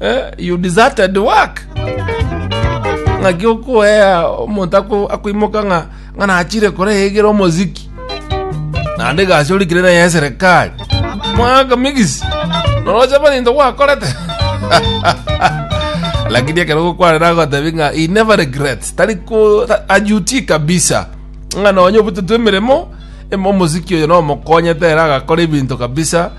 Eh, you deserted work. Ng'aki okoea omonto ako- akoimoka ng'a ng'a nachire koreyegera omoziki. Naende egasi orikire naye ya serikali. Mwaka migisi. Noroche bari into gwakorete. Lakini ekero gokwana nagotebi ng'a he never regrets. Tari ko ta- ajuti kabisa. Ng'a nonye obutete emeremo emo omoziki oyo nomokonyete ere agakora ebinto kabisa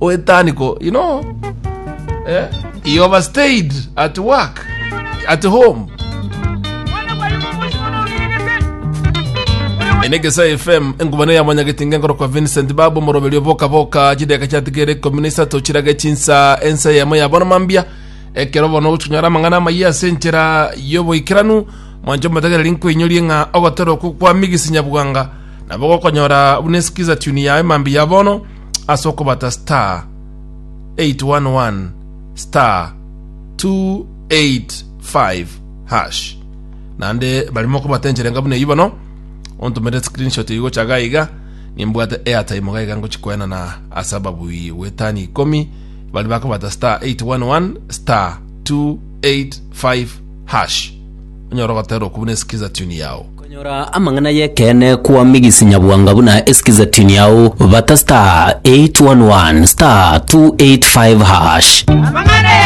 Oetaniko, you know, eh? He overstayed at work, at home. ene gesa fm engubane ya mwanyagetinga enkoro kwa vincent babu moroberio boka boka chideka chiatigere ikumi na isato chirage chinsa ensa yamo ya bono mambia ekero bono gochinyora amang'ana amayia ase enchera y'oboikeranu mwancho motagereri nkoinyorie ng'a ogotera okwo kwa migisi nyabwanga nabo gokonyora buna esikiza tuni yaye mambia ya bono ase okobata star 811 star 285 hash naende bari mokobata enchera enga buna eyio bono ontomere screenshot eyio gocha iga iga nimbwate airtime iga iga ngochikoenana ase ababui gwetani ikomi bari bakobata star 811 star 285 hash onyare ogoterwa okwo buna esikiza tune yao. Konyora amang'ana y'ekeene kwa Migisi Nyabwanga buna esikiza tune yao, bata *811*285#. Amang'ana y'ekeene.